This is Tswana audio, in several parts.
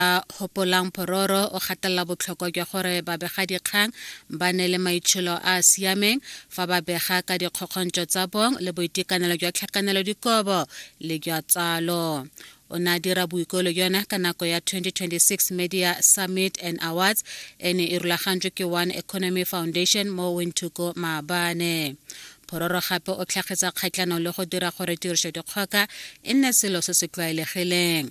a Hopolang Phororo o gatelela botlhokwa jwa gore babegadikgang ba ne le maitsholo a a siameng fa ba bega ka dikgokgontso tsa bong le boitekanelo jwa tlhakanelo dikobo le jwa tsalo o ne a dira boikolo jone ka nako ya 2026 media summit and awards e ne e rulagantswe ke one economy foundation mo wintuko maabane phororo gape o tlhagetsa kgatlhanong le go dira gore tirisodikgoka e nne selo se se tlwaelegileng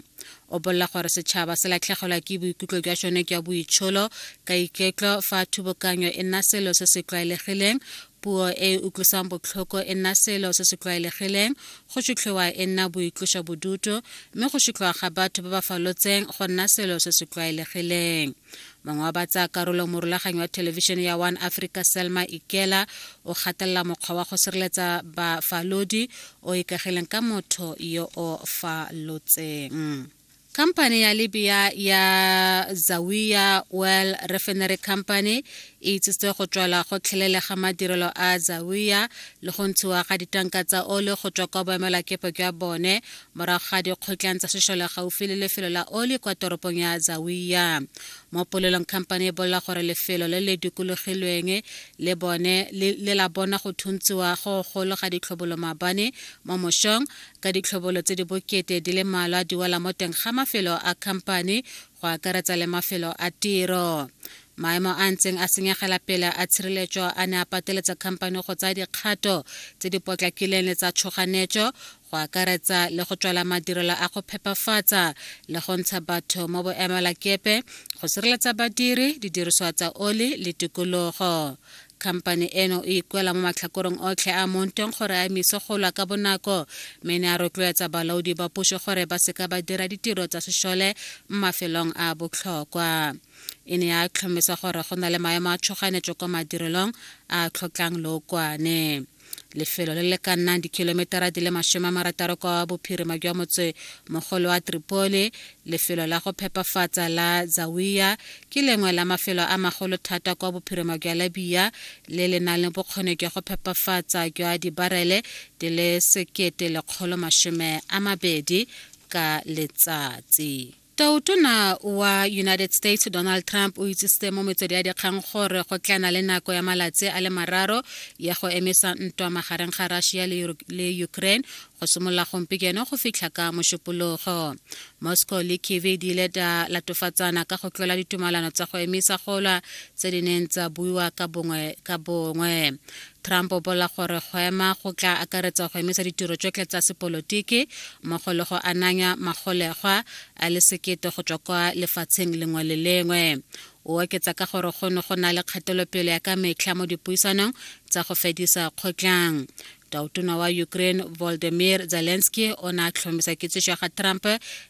o bolela gore setšhaba se latlhegelwa ke boikutlo jwa sone jwa boitsholo ka iketlo fa thubokanyo e nna selo se se tlwaelegileng puo e e utlwisang botlhoko e nna selo se se tlwaelegileng go sutlhiwa e nna boitloso bodutu mme go sutlhiwa ga batho ba ba falotseng go nna selo se se tlwaelegileng mongwe wa ba tsaya karolo morulaganyi wa thelebišene ya one africa selma ikela o gatelela mokgwa wa go sireletsa bafalodi o ikagileng ka motho yo o falotseng Company ya Libya ya Zawiya Oil Refinery Company e itsitse go tswela go tlhelele ga madirelo a Zawiya le go ntshiwa ga ditanka tsa ole go tswa kwa boemelakepe jwa bone morago ga dikgotlang tsa sešole gaufi le lefelo la oli kwa toropong ya zawiya mo polelong khamphane e bolela gore lefelo le le dikologilweng le bone le la bona go thuntsiwa go golo ga ditlhobolo maabane mo mošong ka ditlhobolo tse di bokete di le malwa di wela mo teng ga mafelo a khamphane go akaretsa le mafelo a tiro maemo a ntseng a senyegela pele a tshireletso a ne a pateletsa khamphane go tsaya dikgato tse di potlakileng le tsa tshoganetso go akaretsa le go tswala madirelo a go phepafatsa le go ntsha batho mo boemelakepe go sireletsa badiri didiriswa tsa oli le tikologo Khamphane eno e ikwela mo matlhakorong otlhe a mo ntweng gore a emise go lwa ka bonako mme ne a rotloetsa balaodi ba puso gore ba seka ba dira ditiro tsa sešole mo mafelong a a botlhokwa. E ne ya tlhomisa gore go na le maemo a tshoganetso kwa madirelong a a tlhokang lookwane. lefelo le le ka nnang dikilometara di le masome a marataro kwa bophirima jwa motse mogolo wa tripoli lefelo la go phepafatsa la zawiya ke lengwe la mafelo a magolo thata kwa bophirima jwa labiya le le nang le bokgoni jwa go phepafatsa jwa dibarele di le sekete lekgolo masome a mabedi ka letsatsi Totona wa United States Donald Trump o itsisitse mo metswedi ya dikgang gore go tlana le nako ya malatsi a le mararo ya go emisa ntwa magareng ga Russia le Ukraine go simolola gompieno go fitlha ka mošupologo moscow le kiev di ile tsa latofatsana ka go tlola ditumalano tsa go emisa golwa tse di neng tsa buiwa ka bongwe ka bongwe Trump o bola gore go ema go tla akaretsa go emisa ditiro tsotlhe tsa sepolotiki mmogo le go ananya magolegwa a le sekete go tswa kwa lefatsheng lengwe le lengwe o oketsa ka gore go ne go na le kgatelopele ya ka metlha mo dipuisanong tsa go fedisa kgotlang tautona wa ukraine voldemir zelensky o ne a tlhomisa kitsiso ya ga trump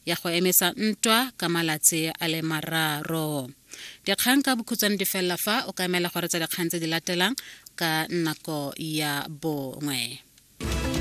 ya go emisa ntwa ka malatsi a le mararo Dikgang ka bokhutshwane di felela fa o ka emela gore tsa dikgang tse di latelang ka nako ya bongwe.